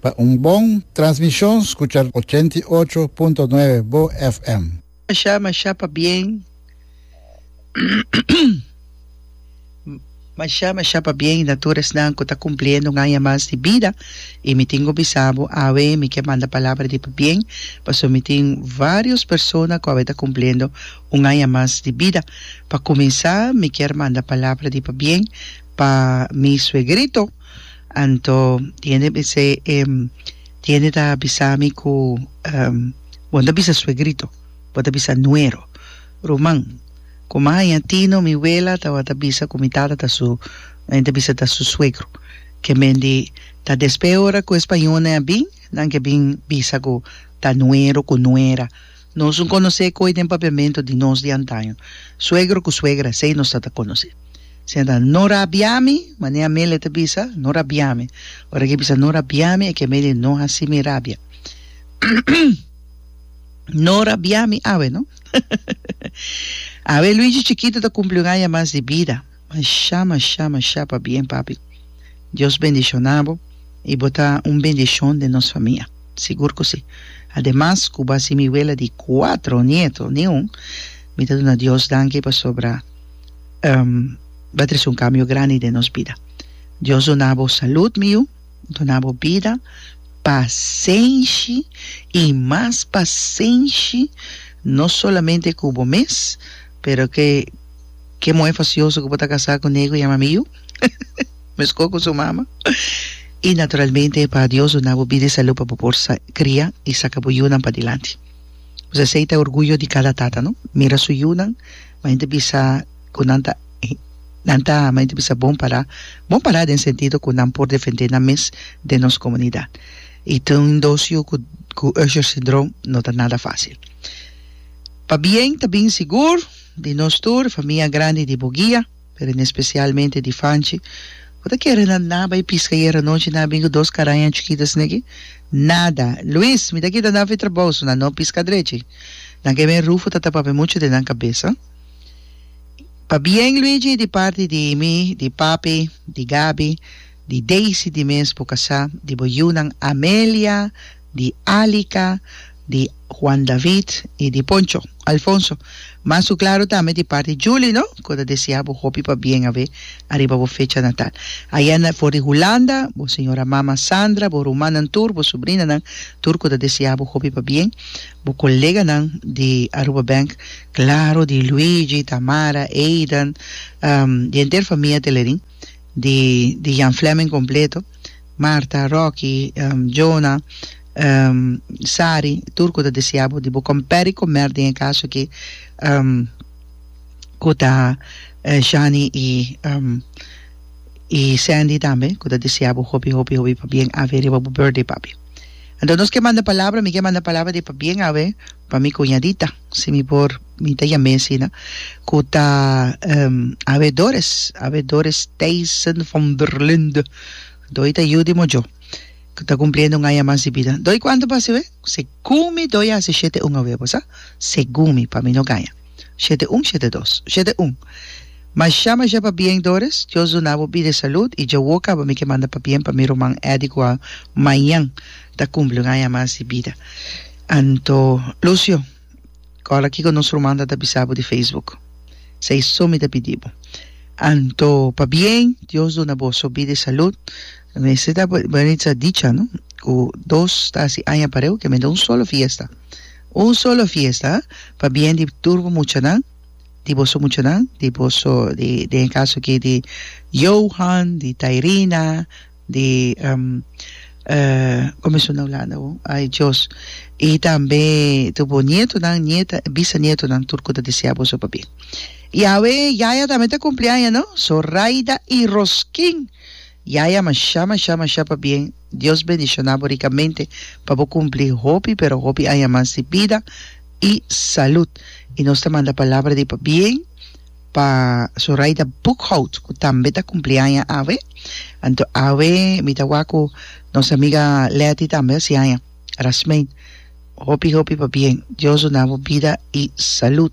Pa un bon transmishon skucha ochenta i ocho punto nuebe bo FM. Masha masha pabien. Mashá, mashá pabien na tur esnan ku ta kumpliendo un aña mas di bida. I mi tin ku bisa bo, awe mi ke manda palabra di pabien, pasobra mi tin vários persona ku awe ta kumpliendo un aña mas di bida. Pa kuminsá mi kier manda palabra di pabien pa mi suegrito. Anto di hende bis'é, di hende ta bisa mi ku, Bo no ta bisa suegrito, bo ta bisa nuero, ruman. Ku maña tino mi wela tabata bisa ku mi tata ta su mi ta bisa ta su suegro ke men di ta despe ora ku e spañolnan a bin nan ke bin bisa ku ta nuero ku nuera nos un konosé koe den papiamentu di nos di antaño suegro ku suegra esei nos ta ta konosé esei ta no rabiami mane Amelia ta bisa no rabiami ora ke bisa no rabiami e ke men di no hasi mi rabia no rabiami awe no. Awe Luigi chikito ta kumpli un aña mas di bida. Mashá, mashá, mashá pa bien papi. Dios bendishona bo i bo ta un bendishon den nos famia. Sigur ku si. Ademas ku bo a si mi wela di kuatro nieto, ni un, mi ta duna Dios danki pasobra bo a trese un kambio grandi den nos bida. Dios duna bo salud mi yu. duna bo bida pasenshi i mas pasenshi no solamente ku bo mes pero ke ke muhé fasioso ku bo ta kasá ku ne ku yama Miyu meskor ku su mama i naturalmente pa Dios duna bo bida i salu pa bo por sa kria i saka bo yunan padilanti pues esei ta orguyo di kada tata no mira su yunan Ma nan ta bisa ku nan ta nan ta ma nan ta bisa bon pará bon pará den sentido ku nan por defendé nan mes den nos komunidat i tin un dos yu ku ku Usher Syndrome no ta nada fásil pabien ta bin sigur di nos tur famia grandi di Bugia. pero en especialmente di Fanchi, bo ta kere na na bai pisca ayer anochi na bin cu dos caraña chukita sin aki? Nada! Luis, mi ta kita na fi trabao so na no pisca drechi. Nan ke men Rufo ta tapa pe mucho den nan cabeza. Pabien Luigi di parti di mi, di papi, di Gabi, di Daisy di mes bo casa, di bo yiunan Amelia, di Alica, di Juan David y di Poncho, Alfonso, mas su claro tambe di parti Julie no, cu ta desea bo hopi pa bien awe ariba bo fecha natal. Ayanda for di Hulanda, bo señora mama Sandra, bo rumannan tur, bo sobrinanan tur cu ta desea bo hopi pa bien, bo coleganan di Aruba Bank, claro di Luigi, Tamara, Aidan, di henter famia Telerin, di di Jan Fleming completo, Marta, Rocky, Jonah, Sari, tur ku ta desea bo di bo komperi komer den e kas aki ku ta Shani i i Sandy tambe ku ta desea bo hopi hopi hopi pabien awe riba bo birthday papi. Anto nos ke manda palabra mi ke manda palabra di pabien awe pa mi kuñadita si mi por Mi ta yam'é asina ku ta habedores, habedores Thijssen van der Linde. Doi ta yu di mojo ku ta kumpliendo un aña mas di bida. Doi kuantu b'hasi we? Segun mi doi a hasi shete un awe, bosa? Segun mi, pa mi no gaña. Shete un, shete dos. Shete un. Mashá, mashá pabien Doris. Dios duna bo bida i salud. I dja wou kaba mi ke manda pabien pa mi ruman Eddy ku a mañan ta kumpli un aña mas di bida. Anto, Lucio. Ora kiko nos ruman ta ta bisa bo di Facebook? Sa i so mi ta pidi bo. Anto pa bien, Dios duna boso bida i salud. Mester ta Maritza a dicha no ku dos ta hasi aña pareu ke mester un solo fiesta, un solo fiesta ha, pa bien di tur bo muchanan, di boso muchanan, di boso den e kaso aki di Johan, di Tairina, di Comision de Holanda o ay Dios y tambe tur bo nietonan nieta bisanietonan tur cu ta desea boso pa bien y awe yaya tambe ta cumpli aña no Zoraida y Roskin yaya masha masha masha pa bien Dios bendiciona bo ricamente pa bo cumpli hopi pero hopi aña mas di bida y salud y nos ta manda palabra di pa bien Pa Zoraida Boekhoudt cu tambe ta cumpliaña awe. Anto awe mi ta wak cu nos amiga Letty tambe haci aña. Rasmeen, hopi hopi pa bien. Dios duna bo bida y salud.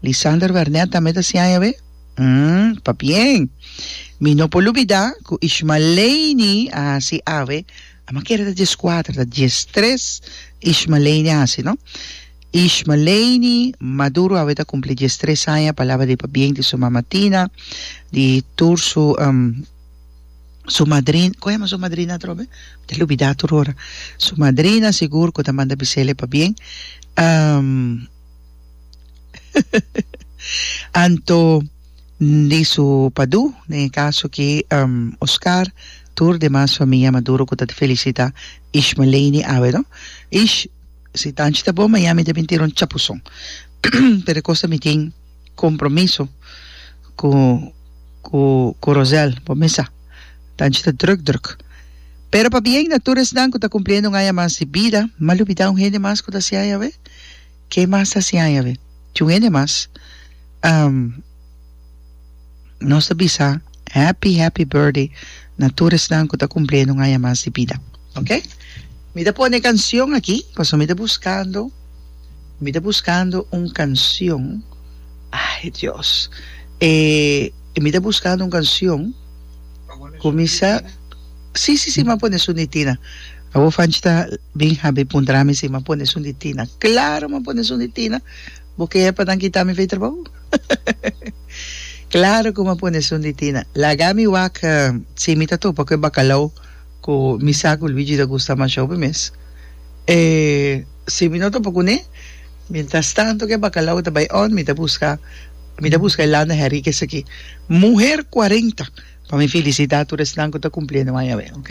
Lisander Wernet tambe ta haci aña awe? Hm, pa bien. Mi no por lubida cu Ishmaleini a haci awe, a maquera ta diescuater, ta diestres Ishmaleini a haci, no? Ishmaleini Maduro awe ta kumpli dies tres aña, palabra di pabien di su mama Tina, di tur su su madrin, kon yama su madrina atrobe? Mi ta lubidá tur ora. Su madrina sigur ku ta manda bisele pabien. Anto di su padu, den e kaso aki Oscar, tur demas famia Maduro ku ta felisitá Ishmaleini awe no. Ish. Si ta anchi ta bon Miami ta bin tira un chapuson pero e cosa mi tin compromiso cu cu cu Rosel bo mi sa ta anchi ta druk druk pero pa bien na tur esnan cu ta cumpliendo un aña mas di bida mal ubida un hende mas cu ta sian awe? Ke mas ta sian awe? Tin un hende mas. nos ta bisa happy happy birthday na tur esnan cu ta cumpliendo un aña mas di bida ok mi ta pone cancion aki pasobra mi ta buscando mi ta buscando un cancion ay Dios eh mi ta buscando un cancion cu mi sa si si si mi a pone esun di Tina awor Fanchi ta bin habi puntra mi si mi a pone esun di Tina claro mi a pone esun di Tina Bo ke pa nan kita mi fey trabou? Claro cu m'a pone esun di Tina. Laga mi wak sin mi ta topa cu e bacalao cu mi sa cu Luigi ta gusta mashao pe mes. E si mi no topa cu ne, mientras tanto cu e bacalao ta bay on, mi ta busca mi ta busca e lana Henrique esaki. Muher cuarenta pa mi felicita tur esnan cu ta cumpliendo aña awe, ok?